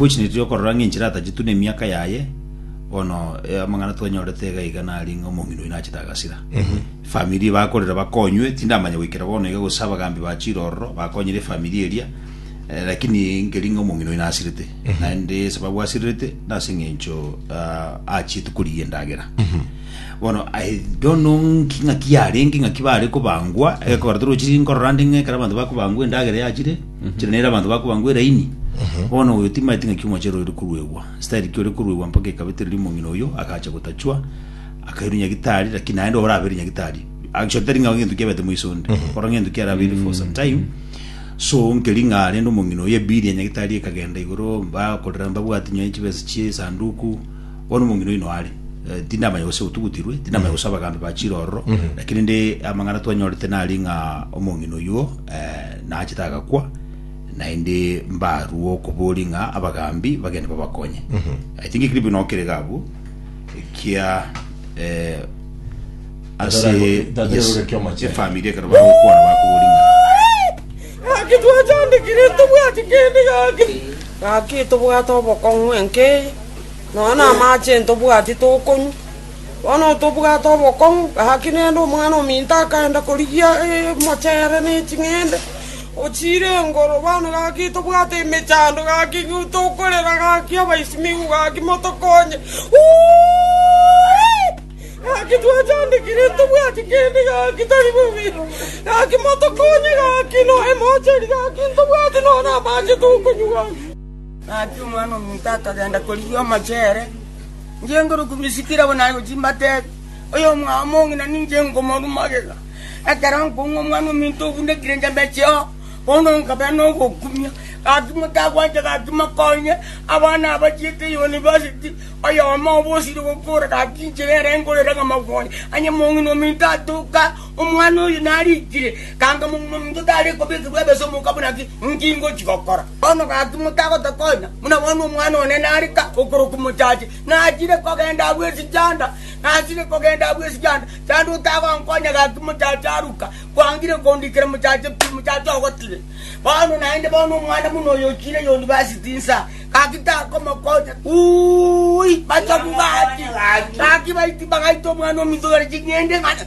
Gwechinetie okorora ng'a enchera atachitu nemiaka yaye, bono eh, amang'ana twanyorete iga iga nari ng'a omong'ina oino achete agasira. Efamiri bakorera bakonywe, tindamanya goikera bono iga gose abagambi ba chirororo bakonyire efamiri eria, eh, lakini nkeri ng'a omong'ina oino asirete. Naende esababu asirerete nase eng'encho ah, achiete korigia endagera. Bono I don't know nki- ng'aki yarenge ng'aki bare kobangwa, egekogera torochi nkorora ande ng'a ekero abanto bakobangwa endagera yachire, chire nere abanto bakobangwa eraini bono oyo timaeti ng'aki omochere ore koruegwa style ki ore koruegwa mpaka ekabetereri omong'ina oyo agacha gotachwa akairu nyagitari lakini naende orabeire nyagitari actually tari ng'a gento kiabete moiso onde kora ng'ento kiarabeire for some time so nkeri ng'a rende omong'ina oyo ebiri ya nyagitari ekagenda igoro mbakorera mbabwati nyoe chibesa chie esanduku bono omong'ina oino are Eh, tindamanya gose otugutirwe tindamanya gose abagambi bachire ororo lakini rende amang'ana twanyorete nari ng'a omong'ina oyuo eh, Nachete agakwa, naende mbarue okoboria ng'a abagaambi bagende babakonye. I think ekiribio nao kerege abwo, ekia eh, ase Tatera- tatera yes, oreke omachenu. efamiri ekero bagokwana bakoboria ng'a Gaki twachandekire ntobwati kende gaki. Gaki tobwate obokong'u enkei, nonya na amache ntobwati tokonywa. “Bono tobwate obokong'u, gaki nende omwana ominto akaenda korigia emochere ne ching'ende, ochiire engoro. Bono gaki tobwate emechando, gaki tokorera, gaki abaisimiku, gaki motokonye. Gaki twachandekire, ntobwati kende, gaki tari bobe, gaki motokonye, gaki noe mocheri, gaki ntobwati nonya amache tokonywa.” Gaki omwana ominto akagenda korigia omochere. Inche nkore okomisikera abwo nare gochia mbateebe, Oyomwao omong'ina ninche nkomorua magega. Ekero nkong'u omwana ominto obundekire nchembeche oo, bono nkabera nogokumia. Gaki motagwancha gaki mokonye, abana abachiete eyunivasiti, oyomo obo osire gokora, gaki inche nere nkorere ng'a mokonye. Onye mong'ina ominto atoka, Omwana oyo narikire, ganga mominto tare kobekigwa ebesa omoka buna ki? Nki ngochi gokora? Bono gaki motagota konya, buna bono omwana one nare ka okorokwa mochache. Nachire kogenda agwo esijanda, nachire kogenda agwo esijanda. Chanda otagonkonya gaki mochache aruka, kwangire kondikera mochache pi, mochache ogotire. Bono naende bono omwana buna oyo ochire yunivasiti insa, gaki takomokonya. Uui, bachabu gaki, gaki baiti bagaita omwana ominto yore ching'ende ng'ana.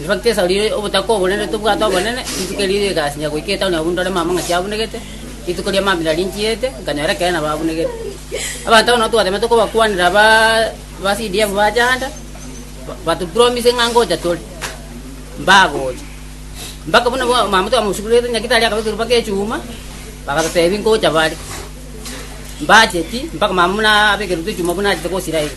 Nebakesa riire obotaka obonene tobwate obonene, rituko erio rigasinya goika etaoni abwo ndore mamang'ati abunegete, rituko ria mambira rinchiete, nkanyora ekeene nabo abunegete. Abanto abo nabo twateemete kobakwanera aba ba CDF bacha ande, ba- batupromise ng'a ngocha tore, mbagocha. Mpaka buna bwa- mama twamosugurete nyagitari akaba ekeruba g'echuma, bagatotebia ngocha bare. Mbacheti, mpaka mama buna abe ekeruba g'echuma buna achete gosira ime.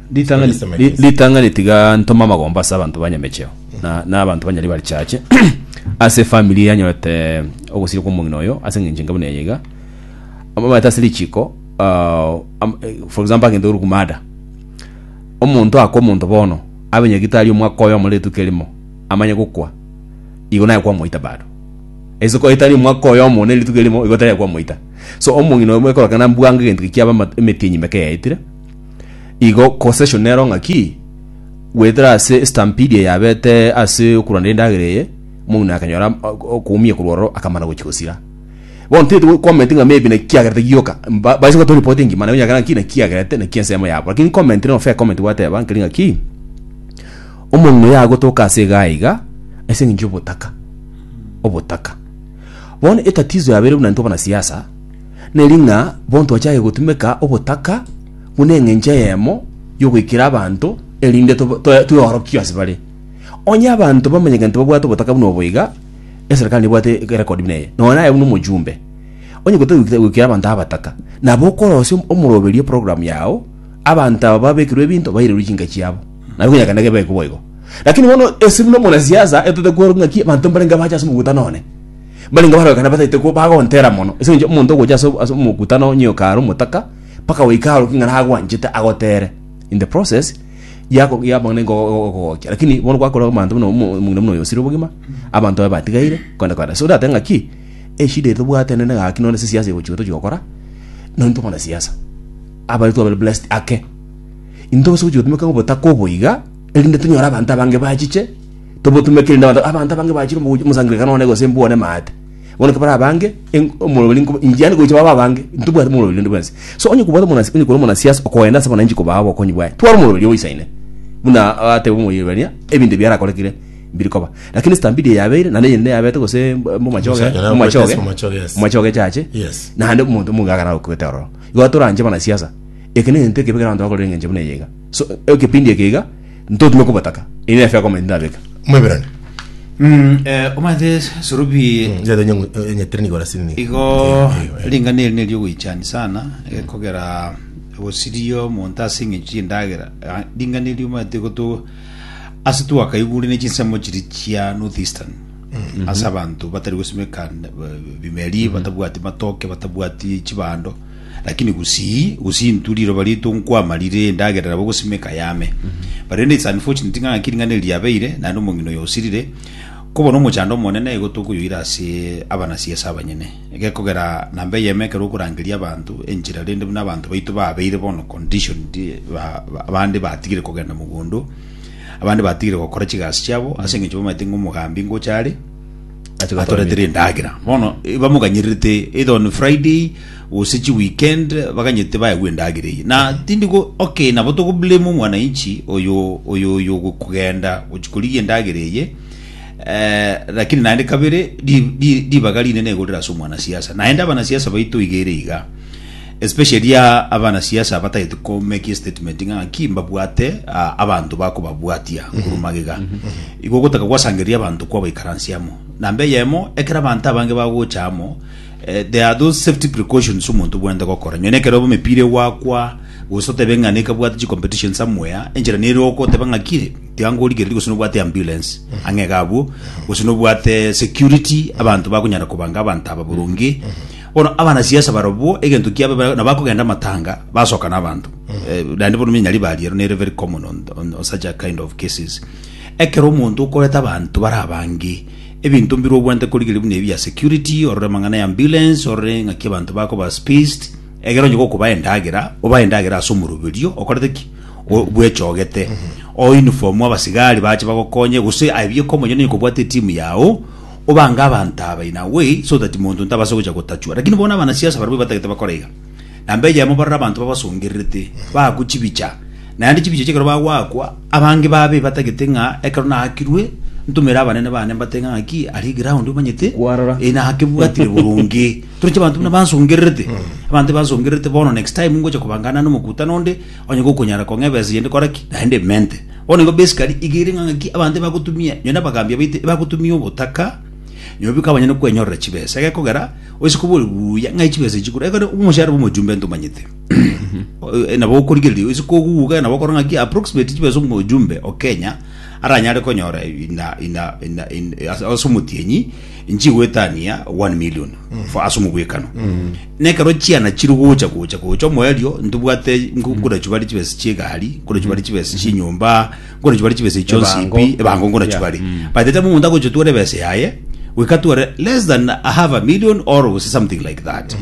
Ritang'ani, Yes, my ri- friends. ritang'ani tiga ntome amagomba ase abanto ba nyamecheo na, na abanto banyari bari chache ase efamiri yanyorete ogosiri kwa omong'ina oyo ase eng'encho enke buna eye iga amabata ase richiko ah, am- eh, for example agente ore kumada omonto aka omonto bono abe nyagitari omwaka oyomo rituko erimo amanye gokwa igo naye kwamoita bado ase kwaitari omwaka oyomo ne rituko erimo igo tari kwamoita so omong'ina oyo mwekorokana mbwango egento ekiaba ama- emetienyi meke yaetire Igo Concession nero ng'aki goetera ase Stampede eye yabete ase okorwana endagera eye, Mouno akanyora am- o- okoumia korwa ororo akamana gochia gosira. Bono tete go comment ng'a maybe naki kiagerete gioka, mba- baise gotoo report engima nabo nyakera ng'aki naki kiagerete naki ensemo yabo. Lakini comment rero fair comment gwateba nkeri ng'aki, Omong'ina oyo agotoka ase iga aiga ase eng'encho y'obotaka, obotaka. Bono etatizo yabeire buna intwe abanasiasa, Neri ng'a bono twachake gotumeka obotaka buna engencho eyemo y'ogoikera abanto, erinde tweorokigwe ase bare. Onye abanto bamanya egento babwate obotaka buna obo iga, eserekari nebwate erekodi buna eye, nonya naye buna omochumbe. Onye gotari goikera abanto abataka, nabo okorosia omoroberio program yao, abanto aba babekirwe ebinto bairerwe chinka chiabo. Nabo ekenyakana kebe iko boigo. Lakini bono ase buna omonasiasa, etote kwerwa ng'aki abanto mbarenge abache ase omogutano one. mbarenge barorekana bataete ko bagontera mono ase eng'encho omonto ogocha ase ase omokutano onye oka are omotaka mpaka goika arokie ng'a nagwanchete agotere in the process yako yaboneka go- go- gogokia lakini bono gwakora abanto buna omo- omong'ina buna oyo osire obogima abanto baye batigaire kwenda kwenda so orateba ng'aki eshida eye tobwate nene gaki nonye ase siasa egochi iga tochi gokora nonye tokona siasa abare twabare blessed ake intwe ase ogochi gotumeka obotaka obo iga erinde tonyore abanto abange bachiche tobotumekiri nabanto abanto abange bachire omogocho omosangererekano one gose mbwane maate bono kebare abange en- omoroberi nkoba injani gocha baba abange ntobwate omoroberi rende bwensi so onye kobwate omonasi onye kore omonasiasa okoenda ase abananchi kobaa obokonyi bwaye twara omoroberi obo isaine buna atebe omoyebania ebinto ebi biarakorekire mbiri koba lakini stambidi eye yabeire naende eyende yabete gose mb- mbomachoge Omocha- yarakwete momachoge ase omomachoge, yes. momachoge chache Yes. naende omonto omonge agara gokwete ororo igo toranche abanasiasa eke negento ekebe kero abanto bakorire eng'encho buna eye iga so ekepindi eke iga Ntotime kobataka, erio nefe akomanya tindabeka. Omoebrania. Mm, eh, omanyete Surubi Njato nyangu- nyatere nigo rasini. igo ring'ana eri neriogoichani sana eh, kogera gosiria omonto ase eng'encho chi'endagera Ah, ring'ana eri omanyete goto ase twakaigurene chinsemo chiri chia north eastern ase abanto batari gosimeka eh, bimeri batabwati matoke batabwati chibando Lakini gusii gusii intwe riroba riaito nkwama rire endagera nabo gosimeka yame. But rende it's unfortunate ng'a ngaki ring'ana eri riabeire naende omong'ina oyo osirire. Koba nomochando omone na igo tokoyoira ase abanasi ase abanyene. Gekogera namba eyemo ekero okorangeria abanto enchera rende buna abanto baito babeire bono conditioned ba ba abande batigire kogenda mogondo, abande batigire gokora chigasi chiabo ase eng'encho bamaete ng'a omogambi ngocha are, atoretire endagera bono eh, bamoganyererete either on friday gose chi weekend baganyete bayagwa endagera eye na tindi go okay nabo togoblame omwananchi oyo oyo oyo gokugenda gochikorigia endagera eye eh, lakini naende kabere ri- ri- ribaga rinene egorera ase omwanasiasa naende abanasiasa baito igere iga Especially abana siasa batagete ko make a statement ng'a naki mbabwate ah, abanto bakobabwatia korwa magega. Igo ogotaka gwasangereria abanto kwabaikaransia amo. Namba eyemo ekero abanto abange bagocha amo eh, there are those safety precautions omonto obwenerete gokora. Nyonia ekero oba emepira egwakwa gose otebe ng'a nekabwate chi competition somewhere enchera nere okoteba ng'a ki tiga ngorigereria gose nobwate ambulance ang'e iga abwo gose nobwate security abanto bakonyara kobanga abanto aba boronge Bono abanasiasa barobwo egento kiabo bare- nabo bakogenda amatanga basoka n'abanto Eh, naende bono minyari bariero nere very common on, on, on such a kind of cases ekero omonto okoreta abanto bare abange ebinto mbire obwante korigeria buna ebi ya security orore amang'ana ya ambulance orore ng'aki abanto bakoba spaced egero onye gokoba endagera oba endagera ase omoroberio okorete ki O- bwechogete o uniform abasigari bache bagokonye gose aye bieka omonye nonye kobwate etimu yao Obange abanto aba in a way so that monto ntabase gocha gotachwa, lakini bono abanasiasa barabwo batagete bakore iga. Namba eyemo barore abanto babasongererete, baakwe chibicha, naende chibicha echi ekero bagoakwa, abange babe batagete ng'a ekero naakirwe, ntomere abanene bane mbate ng'a ng'aki aria eground omanyete, Kwarora. eh, nakebwatire boronge. Toroche abanto buna bansongererete, abanto bansongererete bono next time ngocha kobangana nande omokutano onde, Onye gokonyara kong'eba ense yende kora ki, naende emente. Bono igo besi kari iga ere ng'ang'aki abanto ebagotumia, nonye nabagaambia baito ebagotumia obotaka, nyuma biko abanyene kwenyorera chibesa. Egekogera, oise kobori buya ng'ai chibesa echi chikore, ekero omoshahara bw'omojumbe ntomanyete. Nabo okorigereria oise koguga nabo okore ng'aki approximate chibesa omojumbe o Kenya aranyare konyora ina ina ina ina ase omotienyi nchigwetania one million for ase omobwekano. Na ekero chiana chiri gocha gocha gocha omoerio, ntibwate nko- nkonachu bare chibesa chi'egari, nkonachu bare chibesa chi'enyomba, nkonachu bare chibesa ichio Ebango. nsipi, ebango nkonachu Yeah. bare. Mm. By the time omonto agocha otware ebesa yaye, we can tware less than a half a million or gose something like that.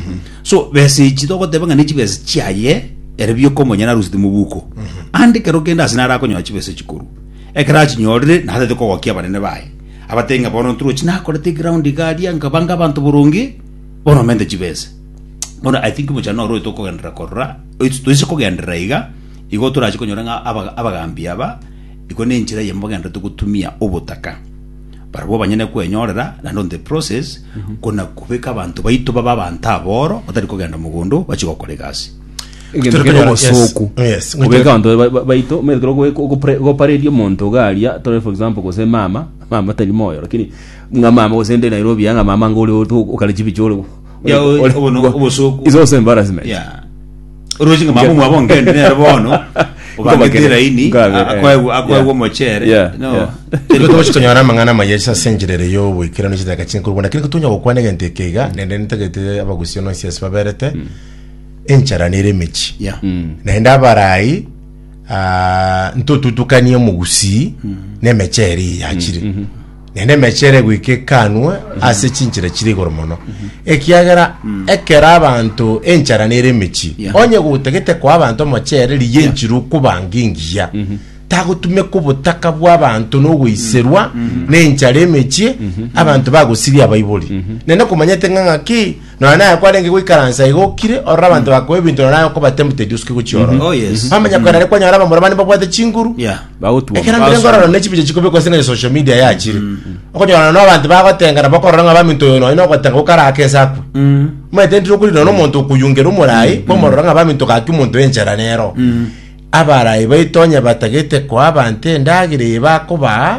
So besa echi togoteba ng'a ne chibesa chiaye ere bioka omonye narusete mobuko. Ande ekero kende ase nare akonyora chibesa echi korwa. Ekero achinyorire, natete kogokia abanene baye. Abatebie ng'a bono ntrochi nakorete eground iga aria, nkabanga abanto boronge, Oromente chibese. Bono I think bochando noro tokogenderera korora, oito toise kogenderera iga, igo torache konyora ng'a aba- abagambi aba, igo nenchera eyemo bagendererete gotumia obotaka. Barabwo banyene kwenyorera, naende on the process, kona kobeka abanto baito babe abanto aboro, batari kogenda mogondo, bachie gokora egasi. Egento Tore kere konyora- yes, obosoku. yes. Kobeka abanto ba- ba- baito, omanyete kero ogoe- ogopre- ogopareria omonto iga aria, tore for example gose mama, mama tari moyo, lakini Ng'a mama gose nde Nairobi ya ng'a mama ngo ore oto okare chibicho ore Ya, ore- obo no- obosoku. It's also embarrassment. ya orochi ng'a mama mwabo ngende nere bono obangete Nkobakere. elaini Nkabe, eh, akoegwa akoegwa yeah. omochere Yeah, no yeah. Igo togochi tonyora amang'ana amaya ase ase enchera ere y'oboikeranu ase edagaka chinkuru bono lakini kotonya gokwana egento eke iga nende nitagete abagusio nonsi ase baberete enchara nere emechi ya Mm. naende abarayi ah, ntotutukanie omogusii na emecheri yachire Naende emeche ere goika ekanwa ase chinchera chire igoro mono, ekiagera ekero abanto enchara nere emechie, Yeah. onye gotagete koa abanto omochere rigia enchera okobanga engiya, tagotumeka obotaka bw'abanto nogoiserwa nenchara emechie, abanto bagosiria abaibori. Naende komanyete ng'a ng'aki Nonya naye kwarenge goikaransa igo okire orora abanto bakoa ebinto nonya naye okoba tempted osuke gochia Mhm. ororo. Oh, yes. Bamanya kwera are kwanyora abamura bane babwate chinguru. Yeah. Bagotwa. Ekero mbire Awesome. ngorora ne chibiche chikobekwa ase ng'a social media yachire. Okonyora no abanto bagotengana bakorora ng'a baminto oyo nonya nogotenga gokarake ense akwe. Omanyete ndire okorira no omonto okoyungera omorai kwamorora ng'a baminto gaki omonto enchera nero. Abarai baito onye batagete koa abanto endagera eye bakobaa